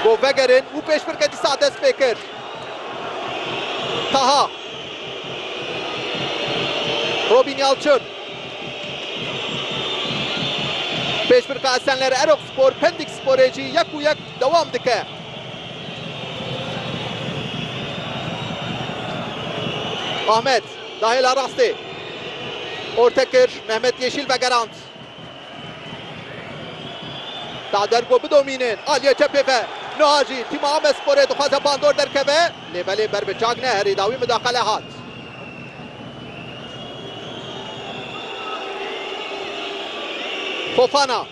Bo vegerin û pêşbirke dîsa dest pê kir. Taha. Robîn Yalçin. Pêşbirka Esenler Eroxspor Pendik Sporê jî yek û yek dewam dike. Ahmet da hêla rastê. Orte kir, Mehmet Yeşîl vegerand. Dader ku bidomînin aliyê çepê ve. Niha jî tîma Amesporê dixwaze bandor derkeve, lê belê ber bi çak neherî dawî midaqele hat. Fofana,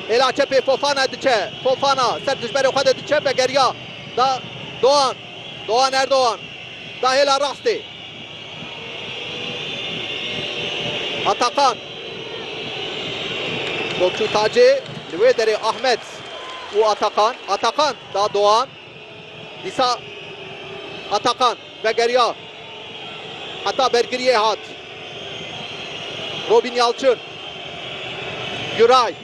hêla çepê Fofana diçe. Fofana ser dijberê xwe de diçe vegeriya da Doğan. Doan Erdogan da hêla rastê. Atakan Topçu Tacê li wê derê Ahmet û Atakan. Atakan da Doan. Dîsa Atakan vegeriya heta bergiriyê hat. Robîn Yalçin, Guray.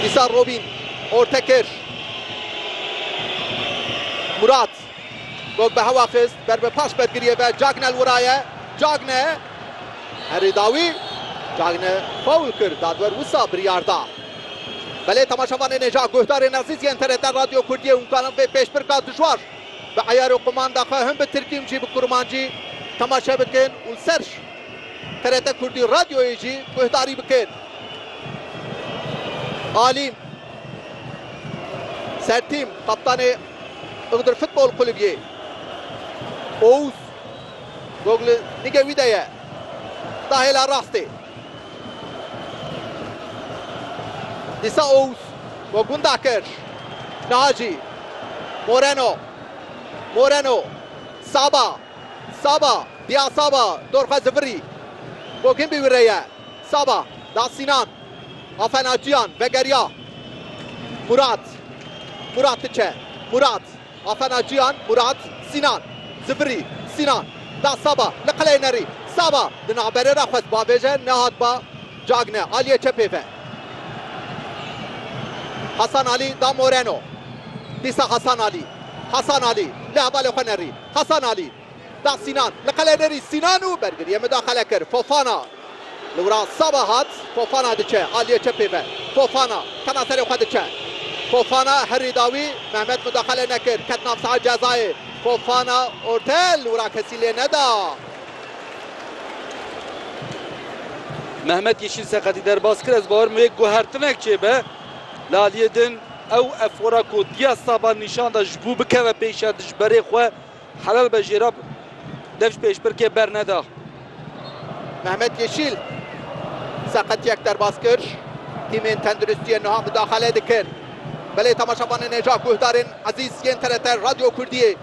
Dîsa Robîn orte kir. Murat gog bi hewa xist ber bi paş bergiriyê ve Cagne li wira ye. Cagne herî dawî Cagne fawl kir dadwer wisa biryar da. Belê temaşevanê nêja guhdarên ezîz yên TRT Radyo Kurdiyê û kanan vê pêşbirka dijwar. Bi eyar û qumanda xwe him bi tirkî him jî bi kurmancî temaşe bikin û li ser TRT Kurdî Radyoyê jî guhdarî bikin. Alîm Sertîm, kaptanê Iğdır Futbol Kulübyê, Oğuz Gogli nigê wî de ye. Da hêla rastê. Dîsa Ouz bo gunda kir. Naci. Moreno. Moreno. Saba. Saba. Dîa Saba dor xwe zivirî. Goginbî wî re ye. Saba. Da Sînan. Afen Aciyan vegeriya. Murat. Murat diçe. Murat. Athena Cihan, Murat, Sinan, Zifiri, Sinan, da Saba li qeleyê nerî, Saba di navberê re xwest bavêje nehat ba Cagne aliyê çepê ve, Hasan Ali da Moreno, dîsa Hasan Ali, Hasan Ali li hevalê xwe nerî, Hasan Ali. Da Sînan li qelenerî Sînan û bergiriyê midaxele kir. Fofana li wira Saba hat. Fofana diçe aliyê çepê ve. Fofana tema serê xwe diçe. Fofana herî dawî. Mehmet midaxele nekir. Ket nav saha cezayê. Fofana orte li wira kesî lê neda. Mehmet Yeşîl seqetî derbas kir. Ez bawer me yek guhertinek çêbe. Li aliyê din ew efora ku Dia Saba nîşan da ji bo bikeve pêşerdi ji berê xwe. Helal be Jêrab dev ji pêşbirkê berneda. Mehmet Yeşîl seqetiyek derbas kir, tîmên tenduristiyê niha mudaxale dikin. Belê temaşevanên hêja guhdarên ezîz yên TRT Radyo Kurdiyê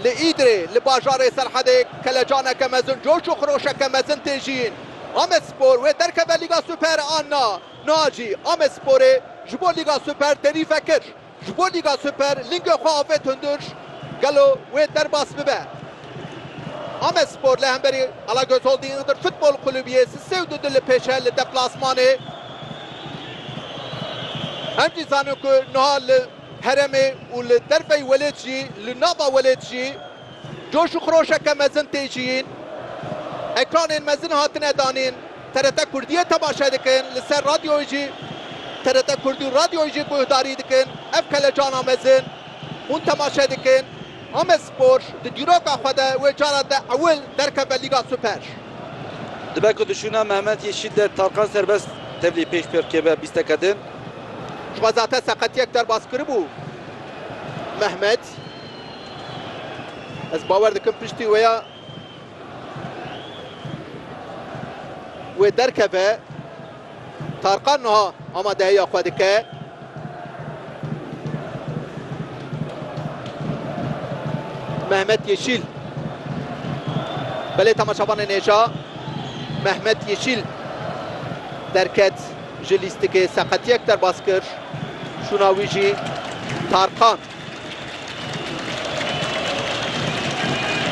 li Îdirê li bajarê Serhedê kelecaneke mezin coş û xiroşeke mezin tê jiyîn. Amedspor wê derkeve Lîga Super a na, niha jî Amedsporê ji bo Lîga Super têrîf vekir. Ji bo Lîga Super lingê xwe avê Tundur, gelo wê derbas bibe? Amedspor li hemberî Alagöz Holding'dir Futbol Kulübiyê si sê û du du li pêş e li deplasmanê. Em jî zanin ku niha li heremê û li derveyî welêt jî li nava welêt jî, Coş û xiroşeke mezin tê ciyîn. Ekranên mezin hatine danîn. TRT Kurdiyê temaşe dikin, li ser radyoyê jî TRT Kurdî û radyoyê jî guhdarî dikin. Ev kelecana mezin hûn temaşe dikin. Amedspor di dîroka xwe de wê cara te ewil derkeve Lîga Super. Dibe ku dişûna Mehmet Yeşîl der Tarkan Serbest tevlî pêş pêx keve bîsteke din. Ji xwezate seqetiyek derbas kiribû Mehmet. Ez bawer dikim piştî wê ya wê derkeve. Tarkan niha amadehiya xwe dike. Mehmet Yeşil. Belê temaşavanên hêja Mehmet Yeşil derket. Ji lîstikê seqetiyek derbas kir, şûna wî jî Tarkan.